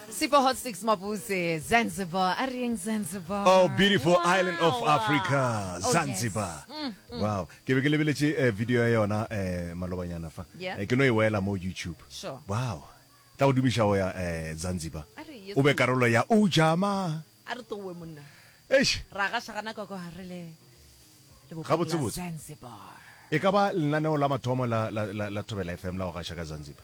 Super Hot Six Mabuse, Zanzibar. A re eng Zanzibar? Oh, beautiful Wow, island of wow. Africa, Oh, Zanzibar. yes. Mm, Wow. Ke be ke lebeletše eh, video ya yona eh, malobanyana fa. Yeah. Eh, Ke no e wela mo YouTube. Sure. Wow. Tla go dumiša go ya eh, Zanzibar. A re yes. O be karolo ya Ujama. A re tlowe monna. Eish, Ra ga shagana ka kwa re le le bophelo la Gabotsebotse. Zanzibar. e ka ba lenaneo la mathomo la, la, la, la Thobela FM la go gaša ka Zanzibar.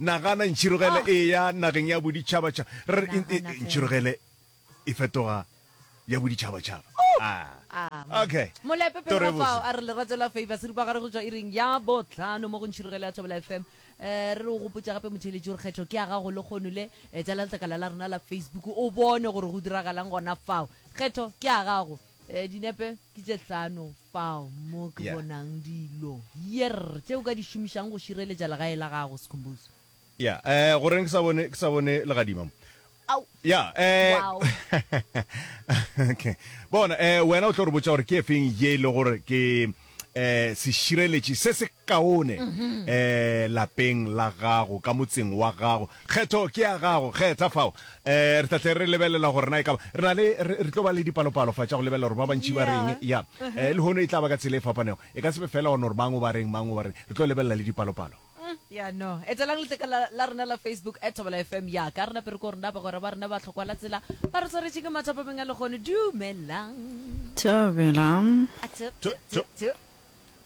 Nagana, Ntšhirogele e eya nageng ya boditšhabatšhaba. Re re, Eng? E, ntšhirogele e fetoga ya boditšhabatšhaba. Ah. Amen. Okay. Molepe pele ga fao a re lerato la favor se rupa gare go tšwa ireng ya botlhano mo go ntšhirogele ya thobela fm Eh, re re o gopotša gape motheeletši gore kgetho ke ya gago le kgono le eh, tsala letlakala la rena la facebook o bone gore go diragalang gona fao kgetho ke ya gago E, dinepe ke tše hlano fao mo ke Yeah. bonang dilo, yerr, tše o ka di šomišago go šireletša legae la gago, Sikhumbuzo. Ya, eh, go reng ke sa bone, ke sa bone legadima mo? Au. Ya, eh, Wow. okay. Bona, eh, wena o tlo re botša gore ke efeng ye e le gore ke, eh, sešireletši se se kaone eh, lapeng la gago ka motseng wa gago kgetho ke ya gago kgetha fao eh, re tlatle re lebelela gore na e kaba re na le re re tlo ba le dipalopalo fa tša go lebelela gore ba bantši ba reng ya eh, le hono e tla ba ka tsela e fapanego e ka sebe fela gone gore mang o ba reng mang o ba reng re tlo lebelela le dipalopalo Uhm, ya no. Etelang letleka la, la rena la Facebook, at Thobela FM, ya ka. Re na pere ko rena, bagwera ba rena ba tlhokwa la tsela, ba re tshwaretše ke mathapa meng a legono. Dumelang. Thobela. A tho, tho, tho, tho.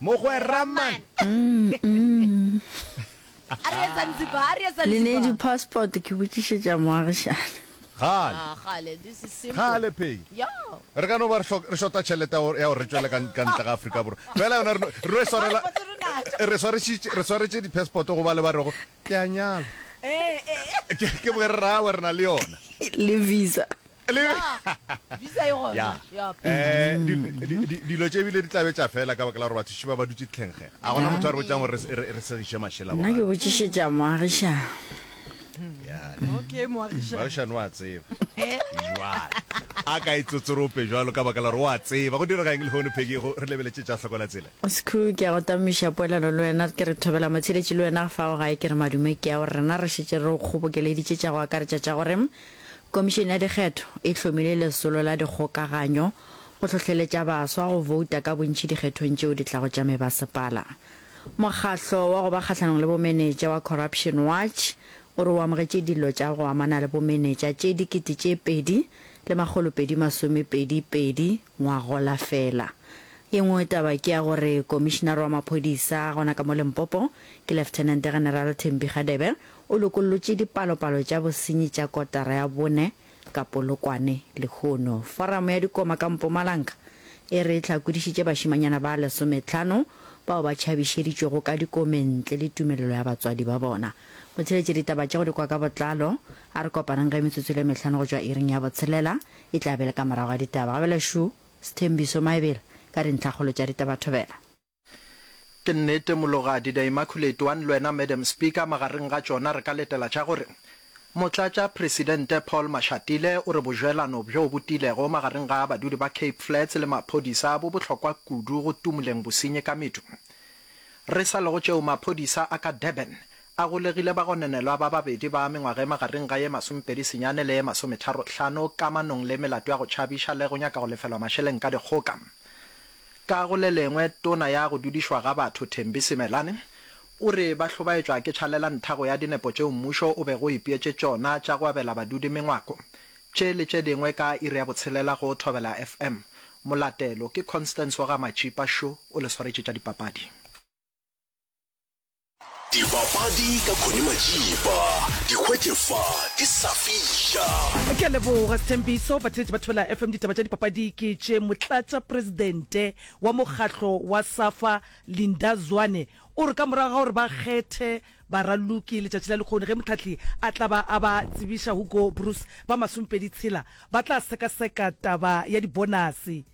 Mogwera man. A re etsa nzipa, a re etsa nzipa. Lenedi passport ke botšišetša moagišane. Gale. Gale Peggy. Re ka no ba re šota tšhelete ya gore re tšwele ka ntle ga Afrika Borwa. Fela yona re no e swarela. Re swaretše di-passport go ba le ba rego ke a nyala. Ke bogere ra gagwe re na le yona. Le visa. Dilo tše ebile di tla be tša fela ka baka la gore bathuši ba ba dutše dihlengge. Ga gona motho a re botšang gore re segiše mašela. Nna ke botšišetša moagišani. okay moagišani wa tseba jwale a ka itsotsorope jwalo ka baka la gore wa tseba go direga eng lehono phekego re lebeletse tša hlokola tsela sekhu ke ya go tamiša poelano le wena ke re thobela motsheletši le wena fa o gae ke re madume ke ya gore rena re šetše re o kgobokeleditše tša go akaretša tša gore komišene ya dikgetho e hlomile lesolo la dikgokaganyo go hlohleletša baswa go vouta ka bontši dikgethong tšeo di tlago tša mebasepala Mokgatlo wa go ba kgahlanong le bomenetša wa Corruption Watch o re o amogetše dillo tša go amana le bomenetša tše dikete tše pedi le makgolo pedi masomepedi pedi ngwagola fela. Ye nngwe taba ke ya gore komišinare wa maphodisa gona ka mo Limpopo ke Lieutenant General Thembi Kgadebe o lokollotše dipalopalo tša bosenyi tša kotara ya bone Ka Polokwane lehono, Foramo ya Dikoma ka Mpumalanga e re e hlakodišitše bašemanyana ba lesometlhano bao ba tšhabišeditšwego ka dikomeng ntle le tumelelo ya batswadi ba bona. Go theeletše ditaba tše go di kwa ka botlalo, a re kopanang ge metsotso e le mehlano go tšwa iring ya botshelela, e tla be e le ka morago ga ditaba. Gabela šu, Sthembiso Maebela ka dintlhakgolo tša ditaba. Thobela. Ke nnete Mologadi The Immaculate One le wena Madam Speaker magareng ga tšona re ka letela tša gore Motlatšapresidente Paul Mashatile o re bojwelano bjo bo tiilego magareng ga badudi ba Cape Flats le maphodisa bo bohlokwa kudu go tumuleng bosenyi ka medu. Re sa lego tšeo maphodisa a ka Durban a golegile bagononelwa ba babedi ba mengwaga e magareng ga ye masomepedi senyane le ye masometharo hlano kamanong le melato ya go tšhabiša le go nyaka go lefelwa mašeleng ka dikgoka. Ka go le lengwe, Tona ya go Dudišwa ga Batho Thembi Simelane o re ba hlobaetšwa ke tšhalela nthago ya dinepo tšeo mmušo o bego o ipeetše tšona tša go abela badudi mengwako. Tše le tše dingwe ka iri ya botshelela go Thobela FM. Molatelo ke Constance wa ga Matšipa Sho o le swaretše tša dipapadi. Dibapadi ka Connie Majiba, di hwetše fa di sa fiša. Ke a leboga Sethembiso. Batheetši ba Thobela FM ditaba tša dipapadi ke tše. Motlatša presidente wa mokgatlo wa Safa Linda Zwane o re ka morago ga gore ba kgethe baraloki letšatši la lekgoni ge mohlahli a tla ba a ba tsebiša Hugo Broos ba masomepedi tshela ba tla sekaseka taba ya dibonase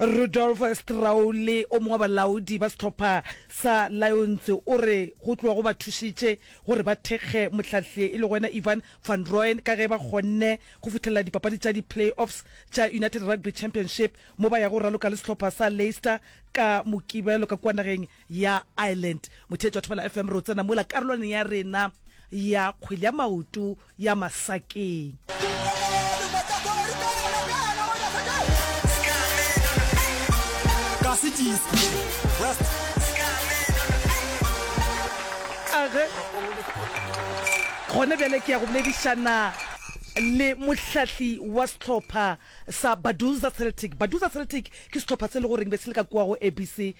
Rudolf Straule, o mongwe wa balaodi ba sehlopha sa Lions o re go tloga go ba thušitše gore ba thekge mohlahli e lego yena Ivan van Rooyen ka ge ba kgonne go fihlelela dipapadi tša di-play-offs tša United Rugby Championship mo ba yago go raloka le sehlopha sa Leicester ka Mokibelo ka kua nageng ya Ireland. Motheetši wa Thobela FM, re o tsena mola karolwaneng ya rena ya kgwele ya maoto ya Masakeng. Age, gone bjale ke ya go boledišana le mohlahli wa sehlopha sa Baduza Celtic. Baduza Celtic ke sehlopha se e le goreng be se le ka kua go ABC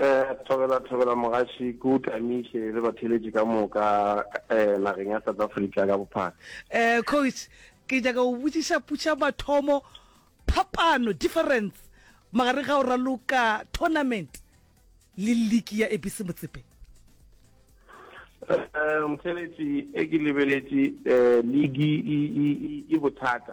Eh, thobela thobela mogaši ke o tamiše le batheletši ka moka eh, nageng ya south africa ka bophara eh coach ke nyaka go botsiša putša mathomo phapano difference magareng ga o raloka tournament le league ya abc motsepe eh, motheletši e ke lebeletše eh, ligi e bothata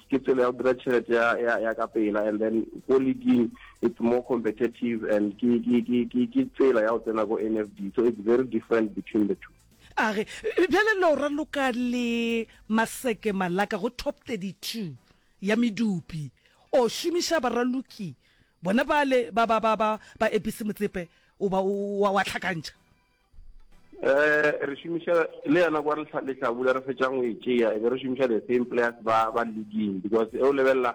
ke tsela ya go dira tšhelete ya, ya, ya ka pela and then ko leading it's more competitive and ke, ke, ke, ke, ke tsela ya go tsena ko nfd so it's very different between the two a re bjale lo raloka le maseke malaka go top 32 ya medupi o šomiša baraloki bona bale ba ba ba ba ba epise motsepe o ba wa tlhakantšha eh re šomiša le yona kwa lehlabula re fetšang o e tšea e be re šomiša the same players ba ba leading because e o lebelela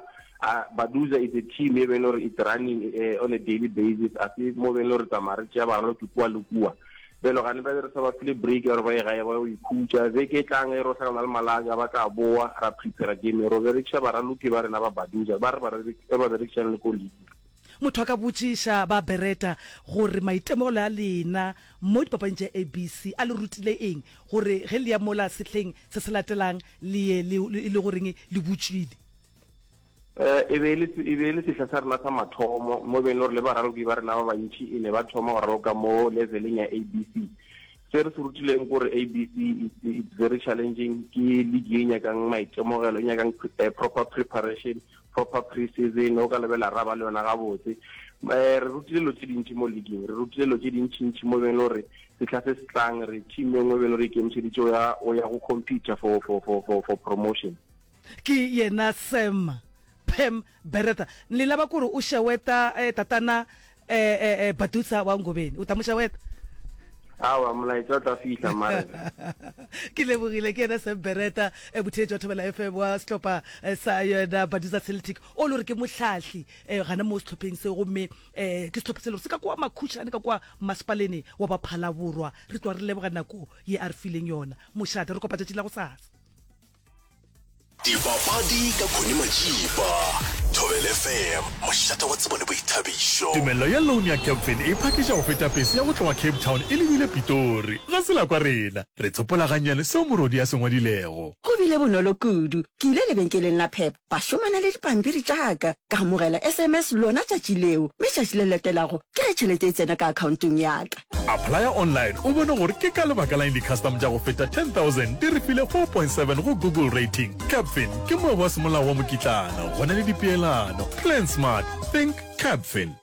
baduza is a team e beng gore it running eh, on a daily basis a se mo beng gore tsamaya re tšea baralo ke kua le kua belo gane ba re sa ba file break gore ba e gae ba o ikhutša be ke tlang e ro hlakana le malaka ba tla boa ra prepare game ro berekisa baraloki ba rena ba baduza ba re ba berekisang le ko league Motho a ka botšiša ba Beretta gore maitemogelo a lena mo dipapading tša ABC a le rutile eng, gore ge le ya mola sehleng se se latelang le ye le e le goreng le butšwile. E be e le sehla sa rena sa mathomo mo beng le gore le baraloki ba rena ba bantši e ne ba thoma go raloka mo leveleng ya ABC. Se re se rutileng ke gore ABC it's very challenging, ke league e nyakang maitemogelo, e nyakang proper preparation proper pre-season o ka lebela ra ba le yona gabotse um re rutile lo tse dintši mo leaguing re rutile lo tse dintšintši mo beng le gore setlha se se tlang re team e nngwe beng le gore ikemišeditše o ya go computer for, for, for, for, for promotion ke yena sam pam bereta le laba kore o šeweta eh, tatana Eh, eh, eh, Badusa wa Ngobeni. O tla moša wena? Awa, molaetsa o tla fihla mare. ke lebogile ke ena sembereta e bothee jwa thobela fm wa setlhopha eh, sa yona badusa celtic o le gore ke motlhatlhi um gana mo setlhopheng se gomme um ke setlhopha se le gore se ka kwa makhušane ka kwa masepalene wa baphala borwa re tswa re leboga nako ye a re fileng yona mošate re kopa tšatši la go sasa dipapadi ka khone majiba thobele fm mošata wa tsebo le boithabišo tumelelo ya loan ya capfin e phakiša go feta pese ya go tloga cape town e lebile pitori ga se la kwa rena re tsopola gannyane seo morodi a se ngwadilego go bile bonolo kudu ke ile lebenkeleng la pep ba šomana le dipampiri tša ka, ka amogela sms lona tšatši leo, mme tšatši le latelago ke ge tšhelete e tsena ka akhaontong ya ka. Applya online o bone gore ke ka lebaka la'ng di-custom tša go feta 10,000 di re file 4.7 go Google Rating. Capfin ke moabi wa semolao wa mokitlana, go na le dipeelano. Plan Smart, Think Capfin.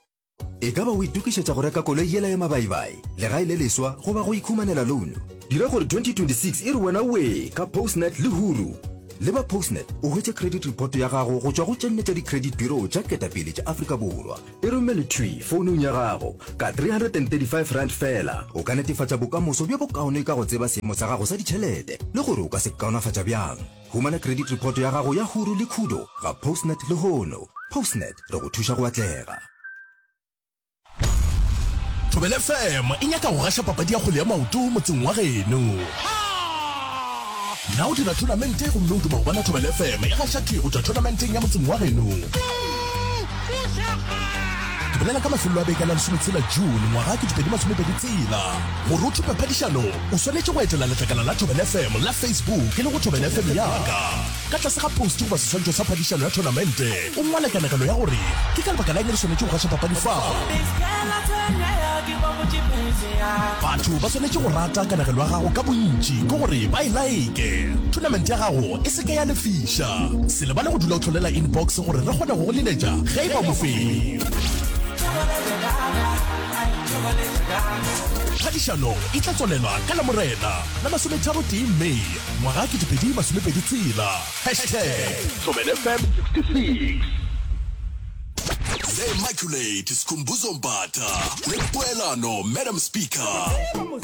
E ka ba o itokišetša go reka koloi yela ya mabaibai, legae le leswa goba go ikhumanela louno? Dira gore 2026 e re wena wee ka Postnet le Huru! Leba Postnet o hwetše credit report ya gago go tšwa go tše nne tša di-credit bureau tša ketapele tša Afrika Borwa. E romele thwi founung ya gago. Ka R335 feela, o ka netefatša bokamoso bjo bokaone ka go tseba seemo sa gago sa ditšhelete le gore o ka se kaonafatša bjang. Humana credit report ya gago ya huru le khudo ga Postnet lehono. Postnet, re go thuša go atlega. Thobela FM e nyaka go gaša papadi ya kgwele ya maoto motseng wa geno. Na o dira thonamente gomme o duma go bona Thobela FM e gaša tee go tšwa thonamenteng ya motseng wa geno? Re bolela ka mafelelo a beke la lesometshela June ngwaga ke 2020 tsela gore o thupe phadišano. O swanetše go etela letlakala la Thobela FM la Facebook e lego Thobela FM Ya Ka. Ka tlase ga poste goba seswantšho sa phadišano ya thonamente, o ngwale kanegelo ya gore ke ka lebaka la eng re swanetše go gaša papadi fao. Batho ba swanetše go rata kanegelo ya gago ka bontši ke gore ba e laeke, thonamente ya gago e se ke ya lefiša. Se lebale go dula o hlolela inbox gore re kgone go go leletša ge e ba mofenyi. Phadišano e tla tswalela ka Lamorena la masometharotee May ngwaga 2020 tshela hashtag ThobelFm 66. The Immaculate Skhumbuzo Mbatha le Poelano Madam Speaker.